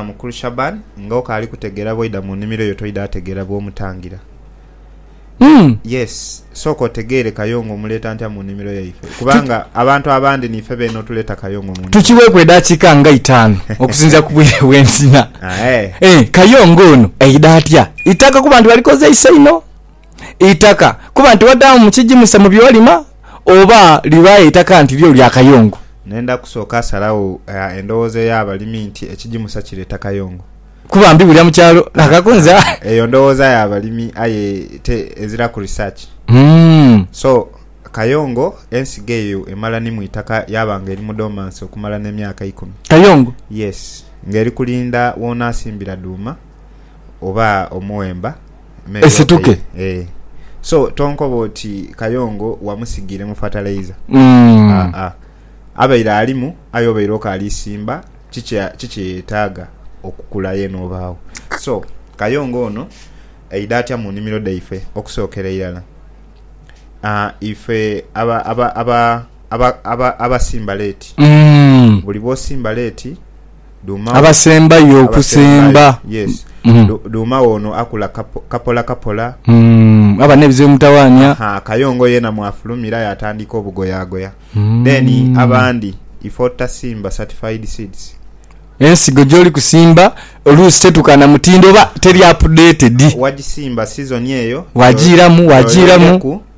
Mukulu Shaban nga okaali kutegeera bwoidha mu nimiro yo toidha ategeera bwomutangira yes sooka otegeere kayongo omuleeta ntya mu nimiro yaife kubanga abantu abandi niife beene otuleeta kayongo mu nimiro Tukiweeku edaakiika nga itaanu okusinziira ku bwire bwenzina. Aye. Eeh kayongo ono aidha atya? Itaka kuba nti balikozeisa inho. eitaka kuba nti wadaamu mu kigimusa mu by'olima oba liba eitaka nti lyo lya kayongo. Nenda kusooka salagho endhoghoza ey'abalimi nti ekigimusa kireeta kayongo. Kuba mbibulira mu kyalo na kakunza. Eyo ndhoghoza ya balimi aye te eziraku research. So, kayongo ensigo eyo emala ni mu itaka yaba nga eri mu dormancy okumala n'emyaka ikumi. Kayongo? Yes. Nga eri kulinda w'onaasimbira dhuuma oba omuwemba. esituke. So tonkoba oti Kayongo wamusigiiremu fertilizer. Aa, abaire alimu aye obaire okaalisimba ki kyeyetaaga okukula yeena obaagho. So Kayongo ono aidha atya mu nnimiro dhaife? Okusookera irala, ife abasimba leeti, buli bwosimba leeti, abasembayo okusemba. Dhuuma we ono akula kapolakapola. Aba n'ebizibu ebimutawaanya. Kayongo yeena mwafulumira yaatandika obugoyaagoya. Then abandi ife otutasimba certified seeds. Ensigo gy'oli kusimba oluusi tetuukaana mutindo oba teri updated. Wagisimba sizoni eyo. Wagiiramu, wagiiramu.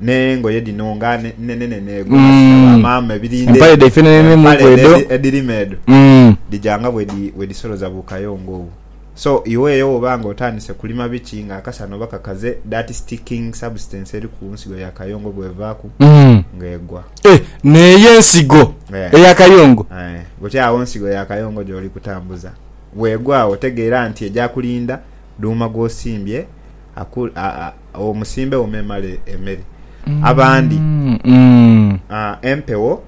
n'engoye dhino nga nenenenheegu, nga ti dha ba maama, ebirinde, empale dh'edo edhirima edho, dhija nga bwedhisoloza bu kayongo obwo. So, iwe eyo bw'oba nga otandise kulima biki nga akasana oba kakaze, that sticking substance eri ku nsigo ya kayongo bw'evaaku, nga egwa. E, n'eyo ensigo eya kayongo. Aye. Buti agho nsigo ya kayongo gy'oli kutambuza. Bw'egwa agho tegeera nti eja kulinda dhuuma gw'osimbye aku, a, a. Agho musimbegho memale emere. Abandi, ah, empewo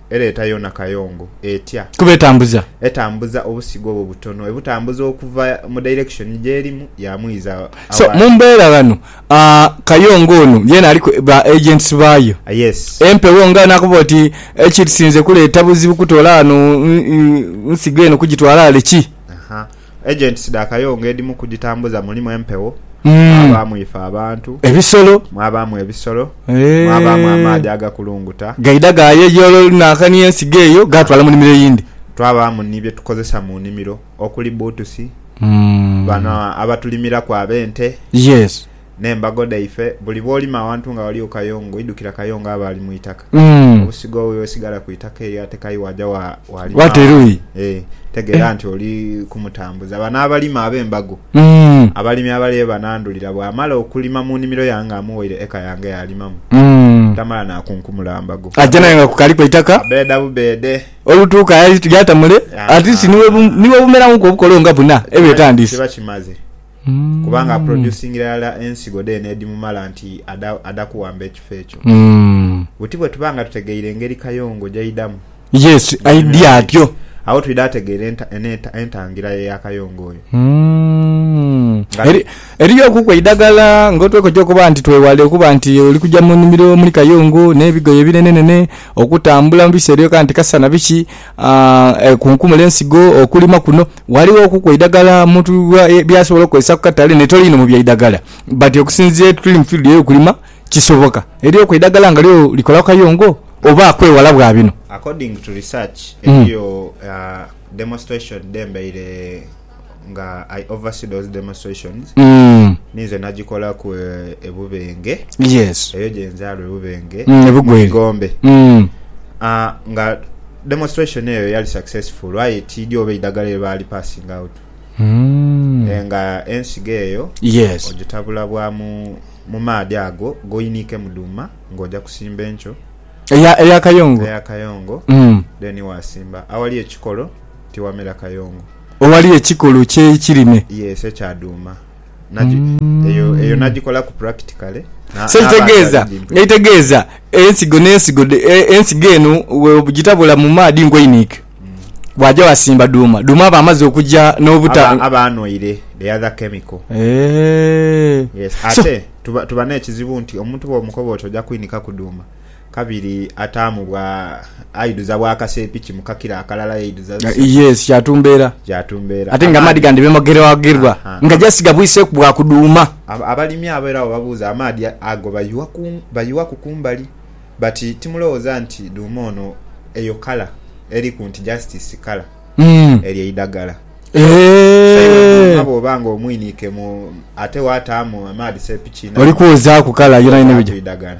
ereeta yoona kayongo, etya? Kuba etambuza. Etambuza obusigo obwo butono, ebutambuza okuva mu direction gyerimu yamwiza So, mu aghali. mbeera ghano, ah, kayongo ono yeena aliku ba agents baayo. Ah, yes. Empewo nga anakoba oti, ekisinze kuleeta buzibu kutoola ghano, mm, mm, nsigo eno kugitwaala ghale ki? Aha. Agents dha Kayongo edhimu ku dhitambuza mulimu empewo, mwabaamu ife abantu, Ebisolo. mwabaamu ebisolo, mwabaamu Eeh. amaadhi agakulunguta, Gaidha gaayeyoola olunankania ensigo eyo gaatwala mu nnhimiro eyindi. Twabaamu ni bye tukozesa mu nnhimiro okuli bbuutusi, bano abatulimiraku ab'ente. Yes. n'embago dhaife, buli bw'olima awantu nga ghaligho kayongo, idhukira kayongo aba ali mu itaka. Obusigo bwe bwesigala ku itaka eyo ate kai waaja waalima awantu, ee, tegeera nti oli kumutambuza. Bano abalima ab'embago, abalimi abali ye banandhulira, bw'amala okulima mu nnimiro yange nga amuwaire eka yange y'alimamu, tamala naakunkumula mbago. Aja nayo nga kukaliku eitaka. Abbeeda bubbeede. Olutuuka yaata mule, at least ni bwe bumerawoku obukolo nga buna ebyo etandiise. Kiba kimaze. kubanga aproducingira irala ensigo dheene edhimumala nti adha kuwamba ekifo ekyo. Buti bwe tuba nga tutegeire engeri Kayongo gy'aidhamu ebintu ebyo, agho twidha tegeera entangira ye ya Kayongo oyo. Eriyookuku eidagala ng'otwekogya okuba nti twewale okuba nti oli kugya mu nnhimiro omuli Kayongo n'ebigoye ebinenenene, okutambula mu biseera ebyo kanti kasana biki, Ekunkumula ensigo, okulima kuno ghaligho okuku eidhagala omuntu byasobola okukozesa ku katale n'etolwa inho mu byaidhagala. Bati okusinziira ye tuli mu field ey'okulima kisoboka. Eriyoku eidhagala nga lyo likolaku kayongo oba kwewala bwa bino? According to research, eriyo demonstration dh'embaire. nga I oversee those demonstrations mm. ninze nagikolaku e Bubenge yes. eyo gyenzaalwa e Bubenge mm, mu Igombe mm. uh, nga demonstration eyo yali successful aye tiidhi oba eidagala lye baali passing out mm. e, nga ensigo eyo yes. ogitabula bwa mu, mu maadhi ago goyiniike mu dhuuma ng'oja kusimba enkyo eya, eya kayongo, eya kayongo mm. then wasimba awali ekikolo tiwamera kayongo. Owali ekikolo ky'eikirime. Yes, ekya dhuuma. Eyo nagikolaku practically. So ekitegeeza, ekitegeeza ensigo n'ensigo, ensigo eno bwogitabula mu maadhi nkweiniike, waaja waasimba dhuuma, dhuuma aba amaze okuja n'obuta... Aba anhoire the other chemical. Yes, ate tuba n'ekizibu nti omuntu bw'omukoba oti oja kwinikaku dhuuma. Kabiri ataamu bwa aidhuza bwa kaseepiki mu kakira akalala yaidhuza seepiki. Yes kyatu mbeera. Kyatu mbeera. Ate nga amaadhi gandi bemogerwagerwa nga just gabwiseeku bwa kudhuuma. Abalimi abo era bwebabuuza amaadhi ago bayiwaku kumbali but timulowooza nti dhuuma ono eyo colour eriku nti just sikala eryo idhagala. So iwe dhuuma bwooba nga omwiniike mu ate waataamu amaadhi seepiki nayo eyo idhagala.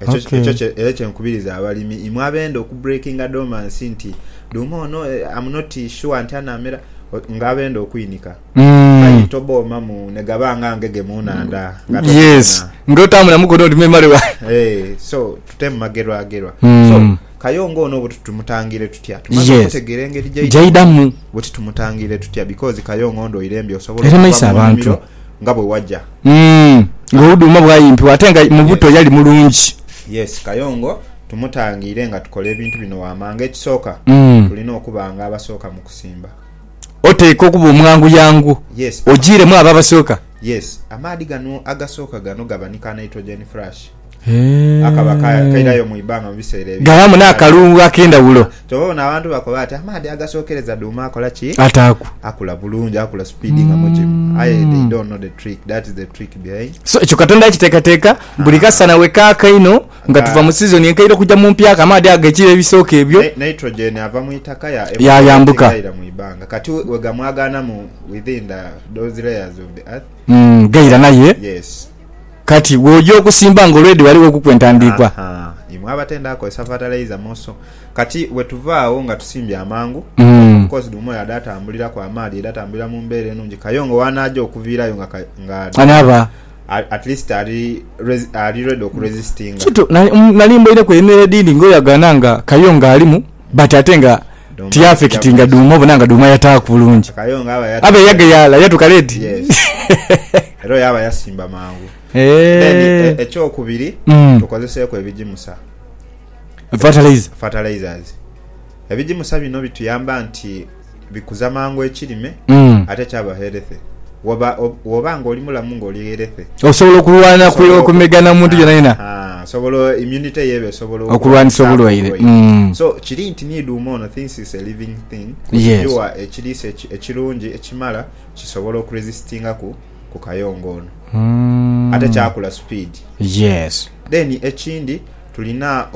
Ekyo Okay. ekyo kye- era kye nkubiriza abalimi imwe abenda oku breakinga dormancy nti dhuuma ono eh, am not sure nti anamera o- nga abenda okwinika Mm. aye toboomamu ne gaba nga ngege mu nhandha nga yes tokufuna. nga otaamu na mukono ndi memale wa Eh, so tutemu magerwagerwa Mm. so kayongo ono buti tumutangire tutya tumaze Yes. okutegeera engeri gyaidamu gyaidhamu buti tumutangire tutya because kayongo ndwaire mbi osobola Era okuva maiso mu abantu. nnimiro nga bwe waja. Umm nga ouduma bwayimpibwa ate nga mubuto yali mulungi. Yes kayongo tumutangiire nga tukola ebintu bino wamanga ekisooka tulina okuba nga abasooka mukusimba. Oteekwa okuba omwangu yangu ojiiremu abo abasooka. Yes amaadhi gano agasooka gano gabanika nitrogen flash. akaba kairayo mu ibanga mu biseera ebyo. Ghabaamu n'akalungu ak'endhawulo. Kyova obona abantu bakoba ati amaadhi agasookereza duuma akola ki? Ataaku. Akula bulungi, akula sipiidi nga mugimu. Aye they don't know the trick, that is the trick behind. So, ekyo Katonda yakiteekateeka, buli ah. kasana we kaaka inho nga ah. tuva mu sizoni enkaire okugya mu mpyaka, amaadhi ago g'ekire ebisooka ebyo. Nitrogen ava mu itaka yayambuka. Kati we gamwagaanamu within the, those layers of the earth. Mm, gaira naye. Yes. Kati, bw'oja okusimba nga olwedi ghaligho okuku entandiikwa. Ha, ha. Imwe abatenda kukozesa fatalaiza mu nso. Kati, bwe tuva agho nga tusimbye amangu, omukozi dhumwe oyo adha atambuliraku amaadhi, aidha atambulira mu mbeera enungi. Kayongo w'anaaja okuviirayo nga, nga anaaba, at least ali, ali ready okuresistinga. Kituufu. Nali, nali mboireku eyo emyoyo edhindi ng'oyo agana nga Kayongo alimu. But ate nga Dhuuma ti affectinga ajja Dhuuma obona nga Dhuuma yataaku bulungi. Akayo nga aba Abe yatuka late. yageyala yatuka late. Yes. Era oyo aba yasimba mangu. Then e- Eehh. ekyokubiri Mm. tukozeseeku ebigimusa, Fertilizer. fertilizers. Ebigimusa bino bituyamba nti bikuza mangu ekirime ate kyaba healthy. Woba woba nga oli mulamu nga oli healthy. Osobola okulwana ku okumega na muntu yona yona. Haa osobola immunity yo eba esobola okulwanisa obulwaire. So kiri nti ni duuma ono thinks it's a living thing kugighiwa ekiriisa ekirungi ekimala kisobole oku resistinga ku ku kayongo ono. Ate kyakula speed. Then ekindi tulina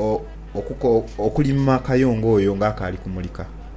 okuko okulima kayongo oyo nga akaali kumulika.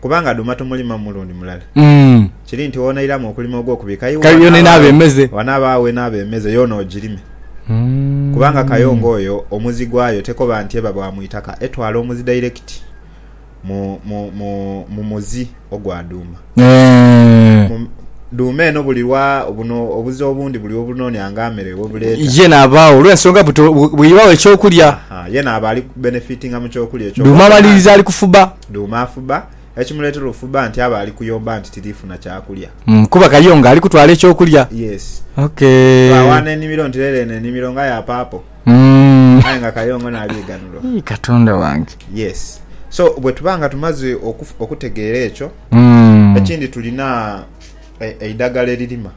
Kubanga dhuma tomulimamu mulundi mulala, kiri nti w'onairamu okulima ogw'okubika iwe, wanaaba agho enaaba emeze yoona ogirime. Kubanga kayongo oyo omuzi gwayo tekoba nti eba bwa mu itaka, etwala omuzi dairekiti mu muzi ogwa dhuuma. Dhuuma eno buli lwa buno obuzi obundi buli we bunoonia nga mere we buleeta. Ye naaba agho olw'ensonga bw'eibagho eky'okulya. Ye naaba ali kubenefitinga mu ky'okulya eky'obutonde. Dhuuma amaliriza ali kufuba. Dhuuma afuba, ekimuleetera ofuba nti aba ali kuyomba nti tiri funa kyakulya. Mm, kuba Kayongo ali kutwala eky'okulya. Yes. Ok. Twawaana enimiro nti lero eno enimiro nga ya paapo. Mm. Aye nga Kayongo naali ighanulwa. Ii, Katonda wange. Yes. So, bwe tuba nga tumaze okutegeera ekyo, mm. ekindi tulina eidhagala eririma.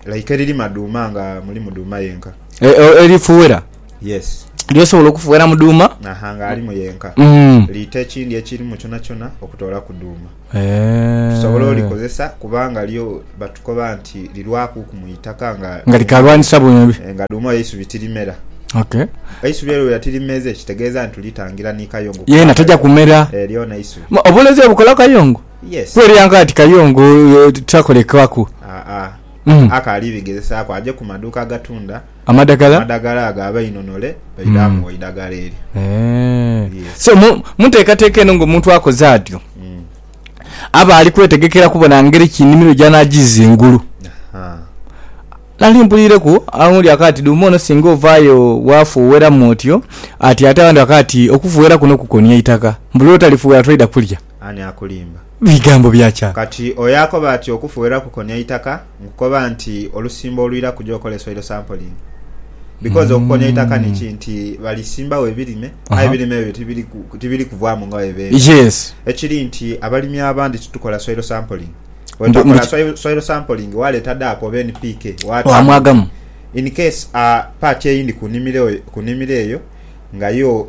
like eririma dhuuma nga mulimu dhuuma yenka e, e, erifuwera yes lyosobola okufuwera mu dhuuma aha nga alimu yenka mm. liita ekindi ekirimu kyonakyona okutoolaku dhuuma eh. tusobola e... olikozesa kubanga lyo batukoba nti lirwakuku mu itaka nga nga likalwanisa bwembi eh, nga dhuuma yeisubi tirimera Okay. Eisubi eryo yatirimeze kitegeeza nti litangira ni kayongo. Yena taja kumera. Eryo eh, na isubi. Obulezi obukola kayongo. Yes. Kwelya nga nti kayongo tikakolekebwaku. Aa. Mm. Ako alibigezesaaku aje ku maduuka agatunda Amadagala. amadagala ago abainonole baidhe Mm. amuwa eidagala eryo. Eeh. Yes. So mu mu nteekateeka eno ng'omuntu akoze atyo, Mm. aba ali kwetegekera kubona ngeri ki enimiro gy'anaajiza engulu. Aha. Nali mpuliireku aghundhi akagha ati dhuuma ono singa ovaayo waafuuweramu otyo, ati ate abandhi bakagha ati okufuuwera kuno kukonia itaka, mbu lw'otalifuuwera toidha kulya. Ani akulimba? Bigambo bya kya? Kati oyo akoba ati okufughera kukonia itaka, nkukoba nti olusimba olwiraku gyokola esoil sampling. Because okukonia itaka niki nti balisimbagho ebirime aye ebirime ebyo tibiri kuvaamu nga bwebibera. Ekiri nti abalimi abandi titukola soil sampling. Bwetakola soil sampling waleeta DAP oba NPK waata muti in case a part eyindi kunimiro eyo nga yo.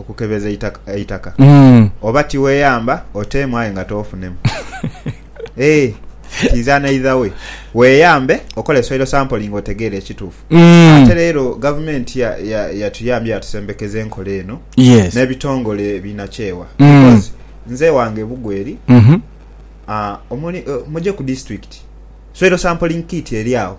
okukebeza eitaka oba tiweyamba oteemu aye nga toofunemu. Ee, kiiza n'eidha we. Weeyambe okole soil sampling otegeere ekituufu. Ate leero Gavumenti yatuyambye yatusembekeza enkola eno n'ebitongole binakyewa because nze ewange e Bugweri muje ku disitulikiti soil sampling kit eri agho.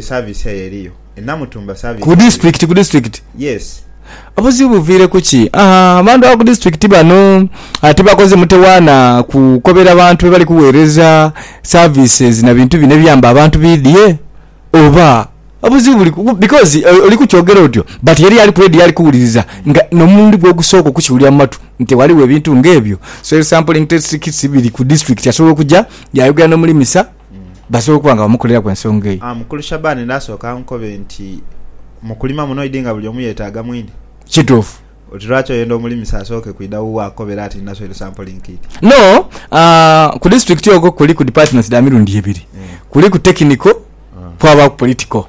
Service eyo eriyo e Namutumba service. Ku district ku district. Yes. Obuzibu buviire kuki? Ahaa abantu aba ku district bano tibakoze mutewaana kukobera bantu bebali kugheereza services na bintu bino ebiyamba abantu bidhie oba obuzibu buli ku because oli kukyogera otyo but eriyo ali ku radio ali kuwuliriza nga n'omulundi gwe ogusooka okukiwulira mu matu nti ghaligho ebintu nga ebyo. Soil sampling test kits biri ku district asobola okuja yaayogera n'omulimisa. basobola okuba nga bamukoleraku ensonga eyo. Mukulu Shaban naasooka ankobe nti, Mu kulima muno idi nga buli omu yeetaaga mwine. Kituufu. Oti lwaki oyenda omulimisa asooke kwidha wuwo akukobere ati ndina soil sample nkit? No, ku disiturikiti okwo kuliku dipatimenti dha mirundi ebiri, kuliku tekiniko kwabaaku politiko.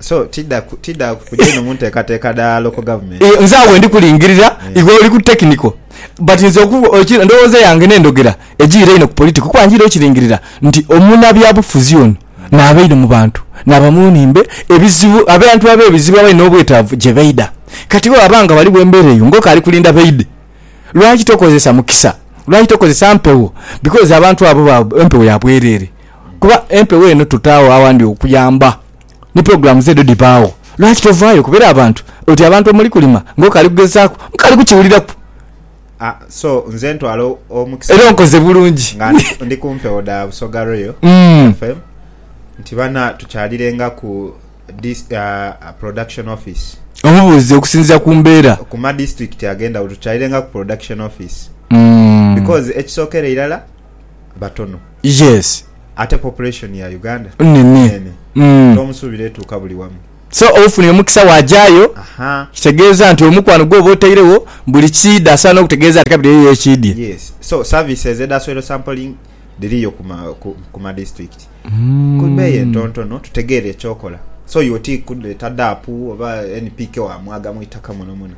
So tidha tidha kuja inho mu nteekateeka dha local government? Eeh nze agho wendi kulingirira, iwe oli ku technical but nze oku eki endhoghoza yange n'endhogera ejiire inho ku political kuba njiire okiringirira nti omunabyabufuzi ono naaba inho mu bantu naaba mu nhimbe ebizibu abantu ab'ebizibu abali n'obwetaavu gye baidha. Kati bwebaba nga ghaligho embeera eyo ng'oka ali kulinda baidhe, lwaki tokozesa mukisa, lwaki tokozesa mpewo because abantu abo ba empewo ya bwereere kuba empewo eno tutaagho awandi okuyamba. ni pulogulaamu ze edho dhibaagho. Lwaki tovaayo okubera abantu oti abantu omuli kulima ng'okaali kugezaaku? Nkaali kukiwuliraku. A, So, nze ntwala omukisa Era guno onkoze bulungi. nga ndi, ndi ku mpewo dha Busoga Royal Mm. FM nti bana tukyalirenga ku dis, ah, Production Office. Omubuuze okusinziira ku mbeera. Ku madistrict ag'endhawulo tukyalirenga ku Production Office Mm. because ekisookera irala, batono. Yes. Ate population ya Uganda nene tomusubira etuuka buli wamu. So ofunye omukisa wajayo kitegeeza nti omukwano gwoba otairegho buli kiidha asaana okutegeeza nti kabiri eriyo ekiidhye. Yes. So services edha soil sampling dhiriyo ku ma district ku beeyi entontono tutegeere ekyokola. So you oti kuleeta daapu oba NPK wamwagamu itaka mwonamwona.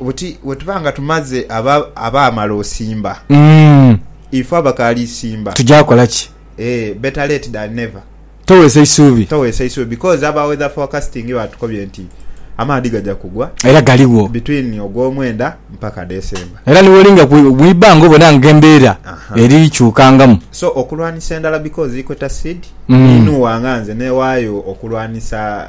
Buti bwetuba nga tumaze abaamala osimba, ife abakaali isimba tugya kola ki? Ee, better late than never. Toweesa isuubi. Toweesa isuubi because aba weather forecasting batukobye nti amaadhi gagya kugwa. Era galigho. Between Ogwomwenda mpaka December. Era ni bwolinga mu ibanga obona nga embeera eri kyukangamu. So okulwanisa endala because ikweta seed, ninhuwa nga nze newaayo okulwanisa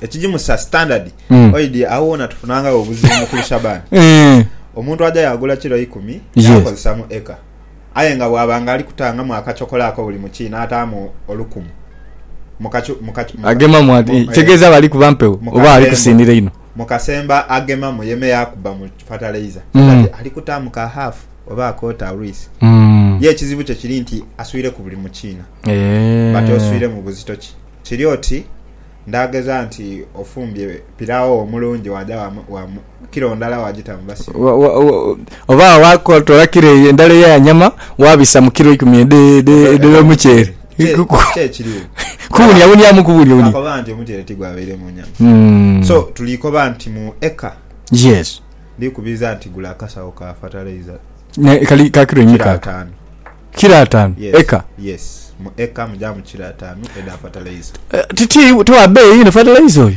ekigimusa standard mm. oidi awo wona tufunangawo obuzibu mukulu shabani mm. omuntu aja yagula kiro ikumi yakozesa mu eka aye nga bwabanga ali kutangamu akacokola ako buli muki nataamu olukumu agemamu ati tegeza bali kuba mpewo oba ali kusindira ino mukasemba agemamu yeme yakuba mu fertilizer mm. ali kutaamu ka half oba akota rwisi mm. ye ekizibu kye kiri nti aswire ku buli mukiina e. Eh. bati oswire mu buzito ki kiri oti Ndaagheza nti ofumbye pirao omulungi waaja wa kilo ndala waagita mu basibe. Oba waakotoola kilo eyo endala eya nyama waabisa mu kilo ikumi edh'omuceere. Ki ekiriwo? Kuwuniawuniamu kuwuniawunia. Nakoba nti omuceere tigwabaire mu nyama. So tuli koba nti mu eka. Yes. Ndikubiriza nti gula akasawo ka fatalaiza. Kali ka kilo imeka ako? Kilo ataanu. Kilo ataanu Yes, eka. yes. Mu eka mujaamu kilo ataanu edha fertilizer. Ti, ti, ti wa beeyi inho fertilizer oyo.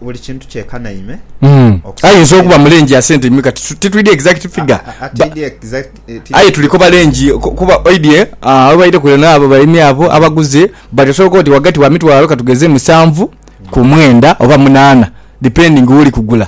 Buli kintu kyekanaime. Mm. Okusinziira- Ayinza okuba mu range ya sente mika titu- titwidi exact A- figure. a- a- Ba- tidi exact- eh, tidi- aye tuli koba range ku- kuba oidye ah, abaire kule naabo balimi abo abaguze but osobola okuba oti wagati wa mitwalo katugeze musanvu ku mwenda oba munaana depending woli kugula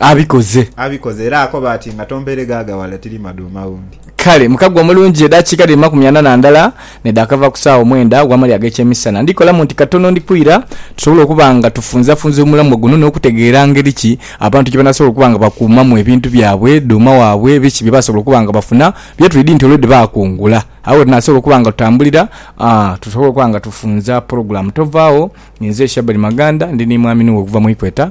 Abikoze. Abikoze, era akoba ati, Nga tompeire ghaagaghale, tiri madhuma gho ndi. Kale, mu kagu omulungi, edaakiika dhiri makumi ana na ndala nedhakava ku saagho mwenda ogw'amalya ag'ekyemisana, ndikolamu nti katono ndikwira, tusobole okuba nga tufunzafunza omulamwa guno n'okutegeera ngeri ki abantu gye banaasobola okuba nga bakuumamu ebintu byabwe, dhuuma waabwe, biki bye baasobola okuba nga bafuna, bye twidhi nti olwo dhebakungula, agho we tunaasobola okuba nga tutambulira, aa, tusobole okuba nga tufunza pulogulaamu. Tovaagho. Ninze Shabani Maganda, ndi ni mwami Nuwe okuva mu Equator.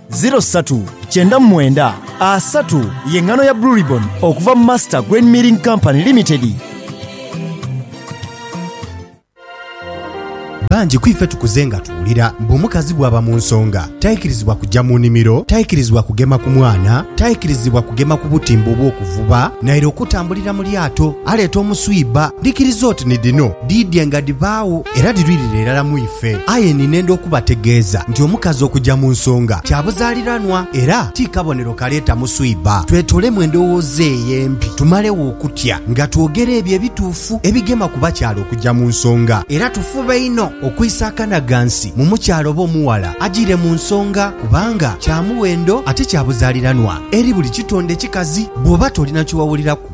Ziro satu kyenda mu mwenda asatu ye ngano ya Blue Ribbon okuva mu Master Grain Milling Company Limited. Bangi ku ife tukuze nga tuwulira mbu omukazi bw'aba mu nsonga taikirizibwa kujja mu nimiro, taikirizibwa kugema ku mwana, taikirizibwa kugema ku butimba obw'okuvuba naire okutambulira mu lyato aleeta omuswiba. Dhikiriza oti ni dhino. Dhiidye nga dhibaagho era dhilwirire irala mu ife. Aye ni nenda okubategeeza nti omukazi okuja mu nsonga kya buzaaliranwa era ti kabonero kaleeta muswiba. Twetolemu endowooza eyo empi tumalegho okutya nga twogera ebyo ebituufu ebigema ku bakyala okuja mu nsonga. Era tufube inho okwisa akanaghansi mu mukyala oba omughala ajiire mu nsonga kubanga kya muwendo ate kya buzaaliranwa eri buli kitonde kikazi. Bw'oba tolina kye wawuliraku,